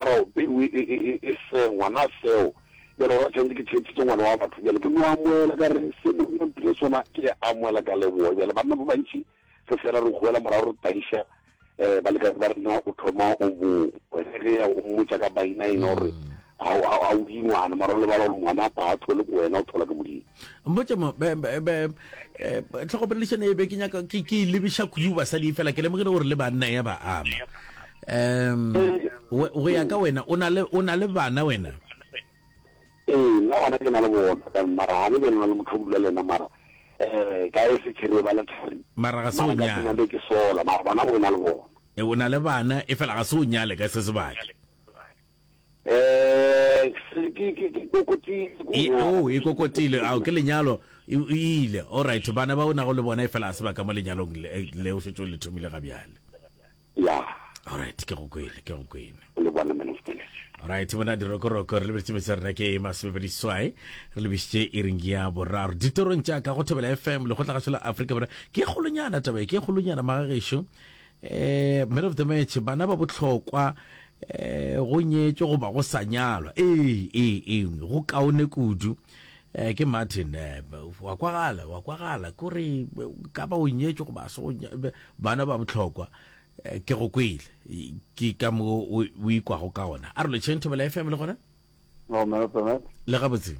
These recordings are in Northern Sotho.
Ao, peu e, e, e, e se ngwana seo. Bjale gona tshwanetse ke theetšitše ngwana wa batho. Bjale ke no amoela ka re, se mo mpile sona, ke a amoela ka leboa. Bjale banna ba bantši re fela re goela morago re taiša, eh, balekane ba rena, o thoma o bo, wena ge ya o mmotša ka bainaina gore, ha, ha, ha o di ngwana, mara o lebala gore ngwana a batho le ko wena o thola ke Modimo. mpotse mo eh, tlhogomelešane e be ke nyaka ke e lebiša kudu basadi fela ke lemogile gore le banna ya ba ama um go ya ka wena o na le bana wena ee nna gona ke na le bona ka mara ga le be lena le motho o bula le ena mara um ka e sechere ba le thari mara ga se o nyale be ke sola mara bana go na le bona e o na le bana e fela ga se o nyale ka se sebaka oh e kokotile ao ke lenyalo e ile all right bana ba o nago le bona e fela a se ba ka mo lenyalong le le o setse o le thomile ga bjale ya all right ke go kwele ke go kwele le bona minister all right bona di roko roko re lebetse metse rena ke ma se bedi swai re lebetse e ring ya boraro ditorong tša ka go thobela fm le go tla ga sela afrika bora ke golonyana taba ke golonyana magagesho Eh, man of the match, bana ba bohlokwa eh, go nyetšwe goba go sa nyalwa ee ee ee go kaone kudu eh, ke martin eh, wa kwagala wa kwagala kore ka ba o nyetšwe goba se go nya- be- bana ba bohlokwa eh, ke go kwele E- ke ka mo o o ikwago ka ona a re lo chain thobela fm le gona No, man of the match. le gabotse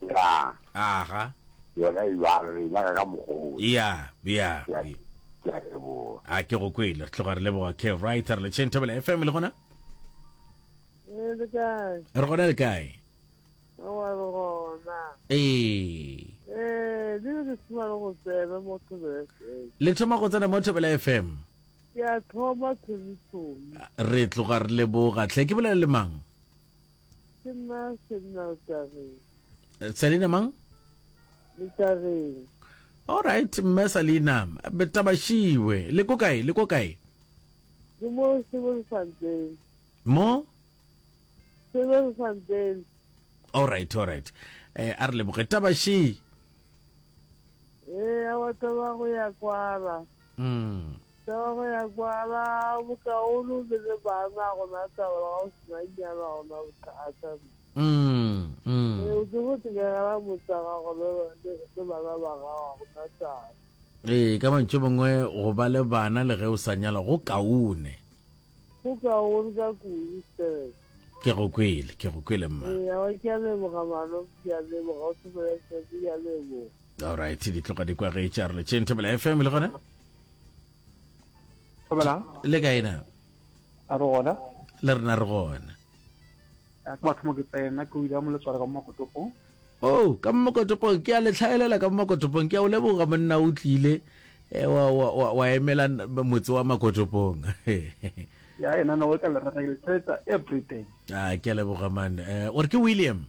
Ya, Aga. yona e bjalo, re e nyaka ka mokgwa o. Ya, ya. Ke a- ke a leboga. A ke go kwele, re tloga re leboga ke right re le Chain Thobela FM le gona. Eh, le kae? Re gona le kae? Aowa, re gona. Ee. Eh, di re thoma re go tsebe mo Thobela FM. Le thoma go tsena mo Thobela FM. Ke a thoma thomi thomi. Re tloga re leboga. Tle ke bolele le mang? Ke nna Senna Letageng. Eh, Selina mang? Letageng. All right, mme Selina, betabashiwe. Le ko kae? Le ko kae? Ke mo Sebelefanteng. Mo? Sebelefanteng. All right, all right. Eh, a re leboge. Tabashi. Eh, a wa taba go ya kwala. Taba ya kwana bokaolo le le bana gona taba ga o sena nyana gona bothata. Ee o ke go tekegela motsa gago le bana ba gago gona taba. Ee ka mantšu mangwe go ba le bana le ge o sa nyala go kaone. Go kaone ka kudu sir. Ke go kwele, ke go kwele mma. Ee, a wa ke a leboga mano, ke a leboga o sepele sebe, ke a leboga. alright di tloga di kwagetša re letšeng thobela fm le gona thobelang le kae na a re gona le rena re gona ke batho mo ke tsena ke o ile mo letswale ka mo makotopong o oh, ka mo makotopong ke a le tlhaelela ka mo makotopong ke a o leboga monna o tlile eh, wa emela motse wa makotopong ya ena no ka le rata ke le everything a ah, ke a leboga man eh, o re ke william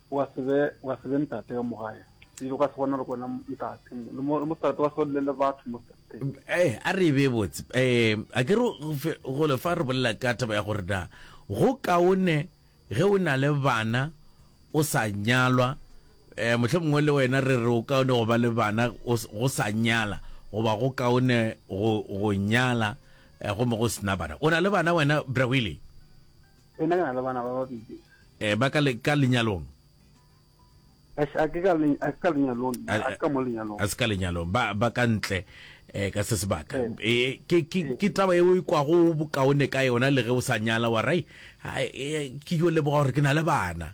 O ka se be, o ka se be ntate ka mo gae. Ebile o ka se kgone gore wena ntate. Le mo, le mo seterata o ka se bolelele batho mo seterateng. M- Eh, a re e bee botse. Eh, a ke re go fe- gole fa re bolela ka taba ya gore na go kaone ge o na le bana o sa nyalwa, eh, mohle mongwe le wena re re o kaone go ba le bana o s- go sa nyala, goba go kaone go, go nyala, eh, gomme go sena bana. O na le bana wena, Bra Willie? Ena ke na le bana ba babedi. Eh, ba ka le ka lenyalong? Ashe, a ke ka le a ka lenyalong, a ke ka mo lenyalong. A se ka lenyalong, ba ba ka ntle eh ka se sebaka. Eh, ke ke ke taba e o ikwa go bokaone ka yona le ge o sa nyala wa rai. Ke yo leboga gore ke na le bana.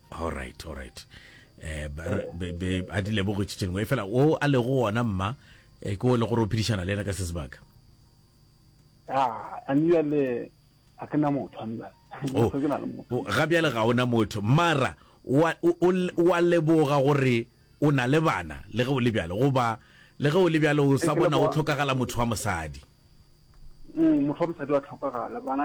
all right all right eh be be a di lebogo tšitšeng we fela o a lego ona mma e ko le gore o phedišana le ena ka se sebaka ah ani ya le a ke na motho ani ba oh. ke na le motho oh, ga bjale ga ona motho mara wa wa leboga gore o na le bana le ge o le bjalo goba le ge o le bjalo o sa bona o tlhokagala motho wa mosadi mm, motho wa mosadi wa tlhokagala bana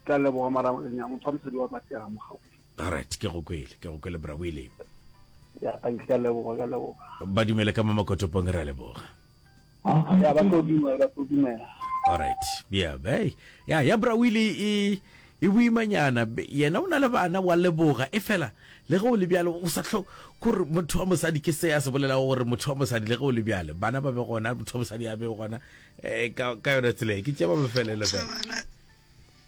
tla leboga mara ya motho wa mosadi wa batega mo gaufi Alright, ke go kwele, ke go kwele Bra Willy. Ya, thank you, ka leboga, ka leboga. Ba dumele ka mo makotopong ra leboga. Ya, ba tlo dumela, ba tlo dumela. Alright, ya, bay. Ya, ya Bra Willy e e boimanyana be- yena o na le bana wa leboga e fela le ge o le bjalo o sa tlo kore motho wa mosadi ke se a se bolelago gore motho wa mosadi le ge o le bjale bana ba be gona motho wa mosadi a be gona um ka ka yona tsela e ke tše ba bofelele fela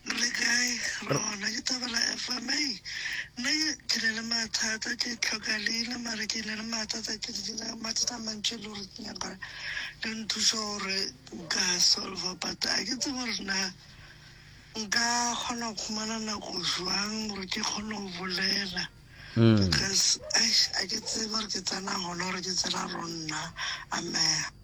Le kae? Re gona ke thabela FM. Hey, nna ke ne le mathata ke tlhoka leina mare ke ne le mathata ke dina mathata a mantši e le gore ke nyaka le nthuša gore nka solva but a ke tsebe gore na nka kgona go khumana nako jwang gore ke kgone go bolela hmm. because a ke tsebe gore ke tsena gona gore ke tsena ronna amea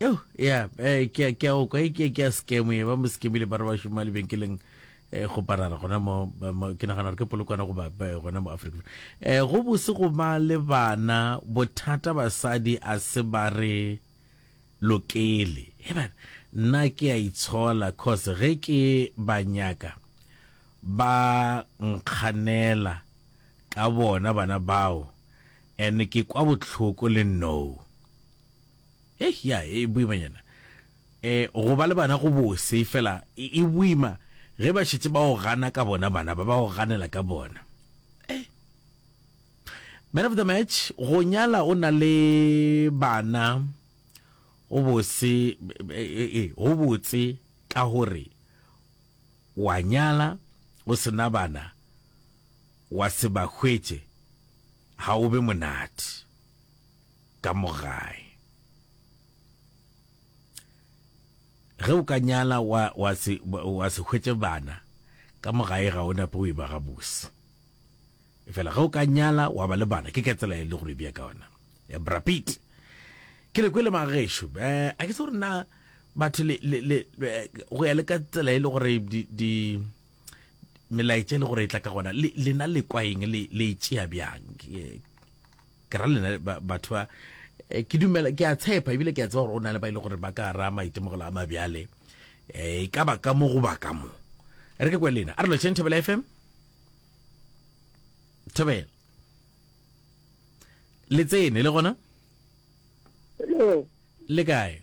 Yo, ya, eh, ke ke o kwa ke ke scam e ba mo scamile ba re ba shuma le benkeleng eh go parara gona mo ba- mo- ke nagana gore ke polokwana go ba ba- gona mo Africa. Eh go bose go ba le bana bothata basadi a se ba re lokele. He bana nna ke a itshola cause ge ke ba nyaka ba nkganela ka bona bana bao And ke kwa bohloko le nnou. Eish ya e boimanyana e go ba le bana go bose fela e boima ge ba šetse ba o gana ka bona bana ba ba o ganela ka bona e Man of the match go nyala o na le bana o bose e go botse ka gore wa nyala o sena bana Wa se ba hwetše ga o be monate ka mo gae. Ge o ka nyala wa, wa, se, wa se hwetše bana ka mo gae ga o nape o e ba gabose. Efela ge o ka nyala wa ba le bana, ke ka tsela e le gore bja ka ona. Ya Brapit. Ke le kwele magešo. Be, a ke se gore na batho le, le, le, go ya le ka tsela e le gore di, di melaetša e le gore e tla ka gona lena le kwa eng le e tšea bjang ke ra lena batho ba eh, ke dumela ke a tshepa ebile ke a tseba gore o na le ba ile e gore ba ka ra maitemogelo a mabjale eh, e ka ba ka mo goba ka mo re ke kwe lena a re lotšheng thobela fm thobela le tsene le gona le kae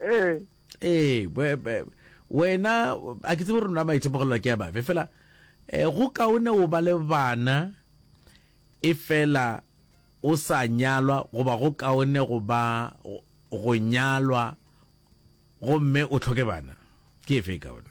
ee ee wena a ke tsebe gore nna maitemogelelo ke ya bafe fela um go kaone o ba le bana e fela o sa nyalwa goba go kaone go ba go nyalwa gomme o tlhoke bana ke efe e kaone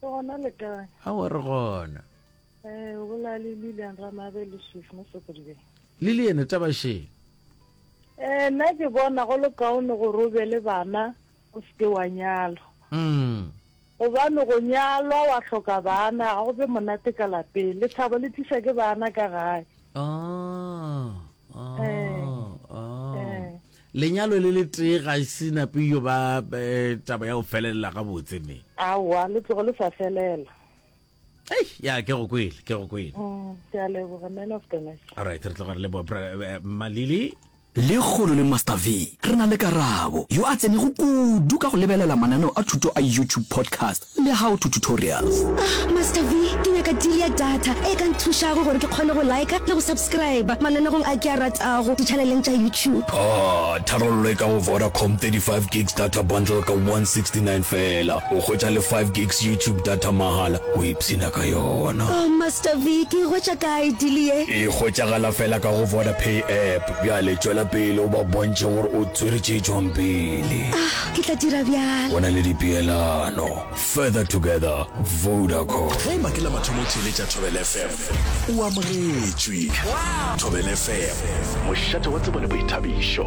gona le kae a wa re gona eh o bola le Lilian Ramabe le Swift mo Sokodibeng Lilian taba sheng eh nna ke bona go le kaone go robe le bana o seke wa nyalo mm gobane go nyalwa wa hloka bana ga go be monate ka lapeng le thabo le tlisa ke bana ka gae ah ah eh. ah eh Lenyalo le le tee ga se nape yo ba taba ya go felelela ga botse me. Aowa, le tlogo le sa felela. Hey, ya ke go kwele, ke go kwele. Mm, ke a leboga man of the match. All right, re tloga re le bo eh, Malili. Le kgolo le Master V, re na le Karabo, yo a tsenego kudu ka go lebelela mananeo a thuto a YouTube podcast. Le how to tutorials. Ah Master V, ke nyaka deal ya data e ka nthušago gore ke kgone go liker le go subscriber mananegong a ke a ratago di-channeleng tša YouTube. Ah, tharollo e ka go Vodacom, 35 gigs data bundle ka 169 feela, o hwetša le 5 gigs YouTube data mahala, o ipshina ka yona. Oh Master V, ke e hwetša kae deal ye? E hwetšagala feela ka go Vodapay app. Bjale tšwela pele o ba bontšhe gore o tswere tše tšwang pele. Ah, ke tla dira bjalo. Go na le dipeelano. Further together, Vodacom. Ge e makela mathomo theeletša Thobel FM, o amogetšwe. Thobel FM, mošate wa tsebo le boithabišo.